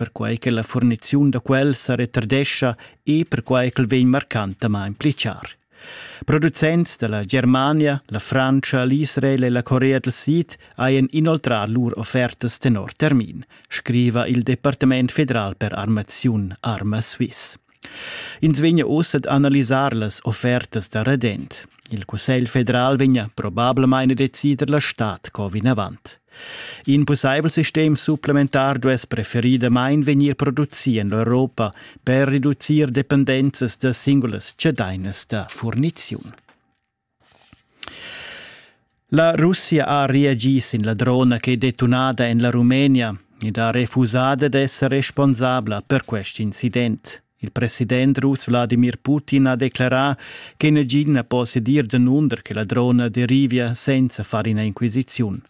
perquai che la furniziun da quel sa retardescha e perquai ch'el vegn marcantamain pli char. Producents da la Germania, la Frantscha, l'Israel e la Corea del Sid hajan inoltrà lur offertas tenor termin, scriva il Departament federal per armaziun Arma Swiss. Ins vegna uss ad analisar las offertas da redent. Il Cussegl federal vegna probablamain a decider la stad co vinavant. In pussaivel sistem supplementar duess preferidamain vegnir producì en l'Europa per reducir dependenzas da singulas cedainas da furniziun. La Russia ha reagì sin la drona ch'è detunada en la Rumenia ed ha refusà dad esser responsabla per quest incident. Il president russ Wladimir Putin ha declerà che nagin na possia dir danunder che la drona derivia senza far ina inquisiziun.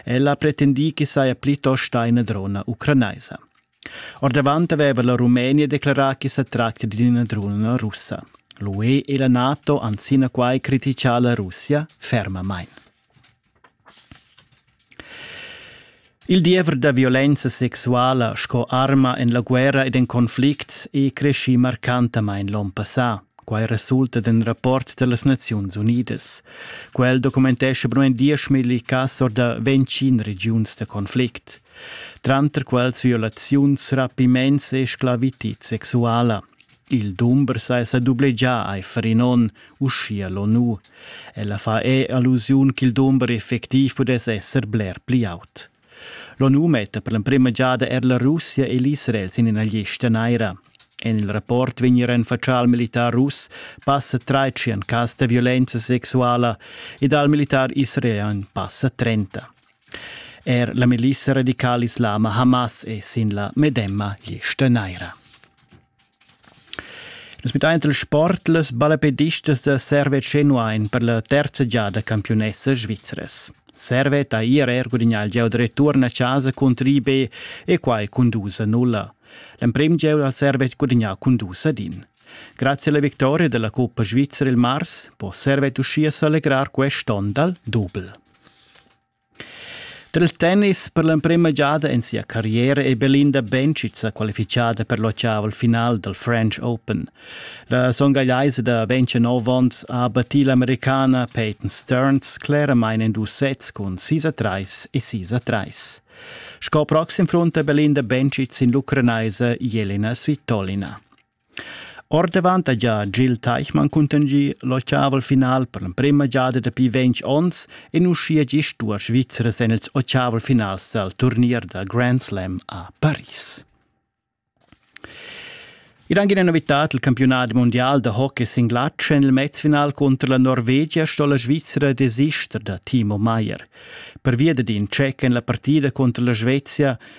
Ella ha pretendì ch'i saja plitost ina drona ucranaisa. Ordavant aveva la Rumenia declerà ch'i sa tractia d'ina drona russa. L'UE e la NATO han sinaquai criticà la Russia fermamain. Il diever da violenza sexuala sco arma en la guerra ed en conflicts è creschì marcantamain l'onn passà. Quai resulta d'in rapport da las Naziuns Unidas. Quel documentescha per mai dieschmilli cass or da ventg regiuns da conflict. tranter quels violaziuns rapiments e sclavitid sexuala. Il dumber sa esa dublegià aifer in on, uschia l'ONU. Ella fa e allusiun ch'il dumber effectiv pudess esser bler pli aut. L'ONU metta per l'emprima giada er la Russia e l'Israel sin ina lista naira. En il rapport vegn renfatschà al militar russ passa 13 cas da violenza sexuala ed al militar israelian passa 30. Er la milissa radical-islama Hamas è sin la medemma lista naira. Nus mittain il sport las ballapedistas da Serve Cenuain per la terza giada campiunessa svizres. Servet ha IRR gudignà il gieu da return a casa contro IB e quai cun dus a nulla. L'emprim gieu ha Servet gudignà cun dus ad in. Grazie alla victoria della Coppa Svizzera il mars può Servet uschia s'allegrar quest'onn dal dubel. Tra il tennis per l'emprema giada in sia carriera è Belinda Bencic sa qualifichada per l'ottav al final dal French Open. La songagliaisa da 29 onns ha battì l'americana Peyton Stearns claramain in dus sets cun 6-3 e 6-3. Sco proxim fronta Belinda Bencic sin l'ucranaisa Jelena Svitolina. Ordavant ha gia Gil Teichmann cuntegni l'ottaval final per l'emprema giada dapi ventg onns e uschia gist duas Svizzras en ils ottaval finals dal turnier da Grand Slam a Paris. Ed anche una novità del campionato mondiale de hockey singlatschen il mezfinal contro la Norvegia sto la Svizzera desister da Timo Meier. Per via d'in check en la partida contro la Svezia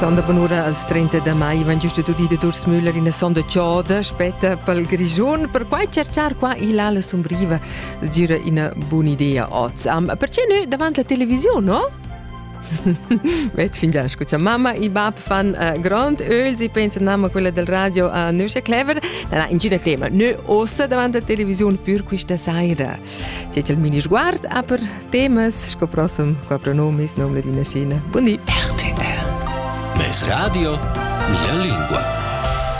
Sonda bunura als 30 da mai vegn gest udì da Durs Müller ina sonda choda spetta pel Grischun. Perquai cercar qua il ala sumbriva sgira ina bun'idea idea oz. Um, perché nu davant la televisiun, no? Vet fin già scucha mamma e bab fan uh, grond öls e pensan nama quella del radio uh, nösche clever. Na, na, ingina tema. Nö ossa davant la televisiun pür quista saira. C'è il mini sguard a per temas sco prossim qua pronomis nom Ladina Scina. Buondì. RTR. Mes radio, mia lingua.